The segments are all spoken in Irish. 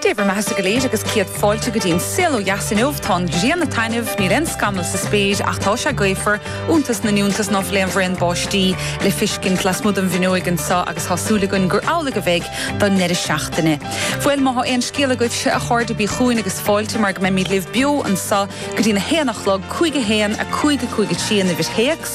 Dé bhur mbeatha-sa go léir agus céad fáilte go dtí an saol ó dheas inniu. Tá an ghrian ag taitneamh, níl aon scamall sa spéir ach tá sé gaofar, iontas na n-iontas ná fuil aon bhraon báistí le feiscint lasmuigh den bhfuinneoig anseo agus tá súil againn gur amhlaidh a bheidh don ndeireadh seachtaine. Bhuel, má thá aon scéal agaibhse a chairde bígí chugainn agus fáilte mar go mbeimíd libh beo anseo go dtí'n a haon a chlog, cúig a haon, a cúig, a cúig a trí, an uimhir théacs.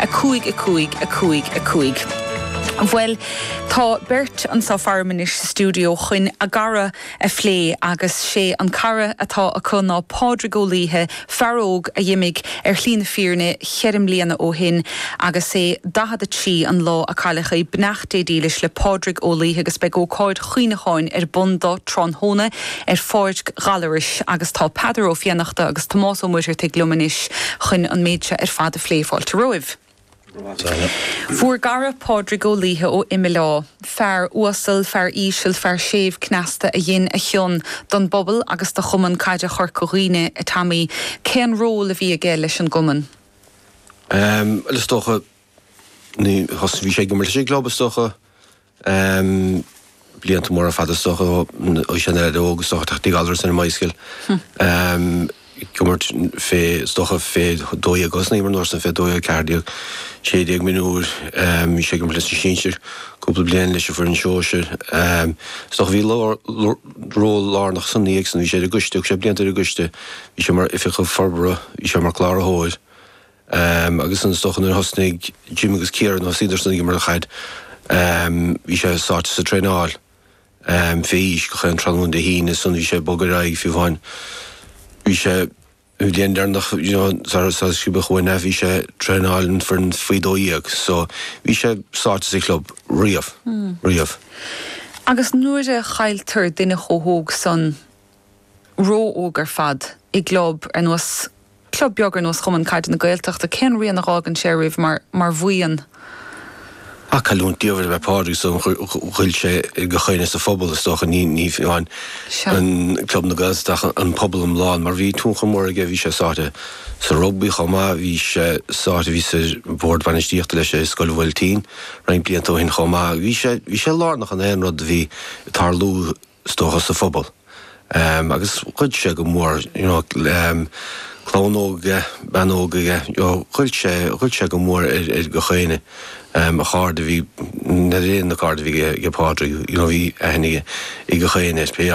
a cúig a cúig a cúig a cúig Bhuel, tá beirt anso faram anois sa stiúideo chuin a gcara a phlé agus sé an cara atá acu ná Pádraig Ó Laoithe, fear óg a d'imigh ar shlí na fírinne cheithre mbliana ó shin agus é daichead a trí an lá a cailleadh é. Beannacht Dé dílis le Pádraig Ó Laoithe agus beidh ócáid chuimhneacháin ar bun dó tráthnóna ar Pháirc Ghallarais agus tá Peadar Ó Fiannachta agus Tomás Ó Muircheartaigh liom anois chuin an méid seo ar fad a phlé. Fáilte romhaibh. Bhur gcara Pádraig Ó Laoithe ó Imileá, fear uasal, fear íseal, fear séimh cneasta a dhein a chion don bpobal agus do Chumann Caide Chorca Dhuibhne, a Tommy, cén ról a bhí aige leis an gCumann? Bhuel, is dócha, bhí sé ag imirt leis an gclub, is dócha. Ahm, blianta móra fada is dócha ó shin ar aois óg, soir go dtí Gallaras ar an mbicycle. Ahm, ag imirt fé, is dócha fé dó dhéag agus san am, an uair san fé dó dhéag ceathair déag, sé déag mionúir, ahm, bhí sé ag imirt leis an sinsir cúpla bliain, leis an foireann shóisir. Ahm, is dócha bhí lár, ról lárnach ansan aige, agus bhí sé ar an gcoiste, thug sé blianta ar an gcoiste. Bhí sé mar Oifigeach Forbartha, bhí sé mar Cláraitheoir. Ehm, agus ansan is dócha nuair a thosnaigh Jim agus Ciara, nuair a thosaíodar san ag imirt chaid, ehm, bhí sé sáite sa traenáil, ehm, fé aois, gach aon tráthnóna Dé hAoine, ansan bhí sé ag bogadh ar aghaidh fiú amháin, bhí sé, an bhliain deireanach, you know, sara, sara sciobadh uainn é, bhí sé ag traenáil an foireann faoi dó dhéag, so, bhí sé sáite sa chlub riamh, riamh. Agus nuair a chailltear duine chomh hóg san, ró-óg ar fad i gclub ar nós, club beag ar nós Chumann Caide na Gaeltachta, cén rian a dh'fhágann sé oraibh mar, mar bhuíon? Bhuel cailliúint diamhair ab ea Pádraig so, ghoill sé ar gach éinne sa phobal is dócha, ní amháin an club na Gaeltachta ach an pobal iomlán mar bhí tionchar mór aige, bhí sé sáite sa rugbaí chomh maith, bhí sé sáite, bhíos ar bhord bainistíochta leis i Scoil an Fheirtéaraigh roinnt blianta ó shin chomh maith, bhí sé, bhí sé lárnach in aon rud a bhí ag tarlú. is dócha, sa phobal. Agus ghoill sé go mór, you know, clann óg aige, bean óg aige, you know, ghoill sé, ghoill sé go mór ar gach éinne. A chairde, bhí, na cairde a bhí aige, Pádraig, you know, bhí aithne aige ar gach éinne, pé áit a.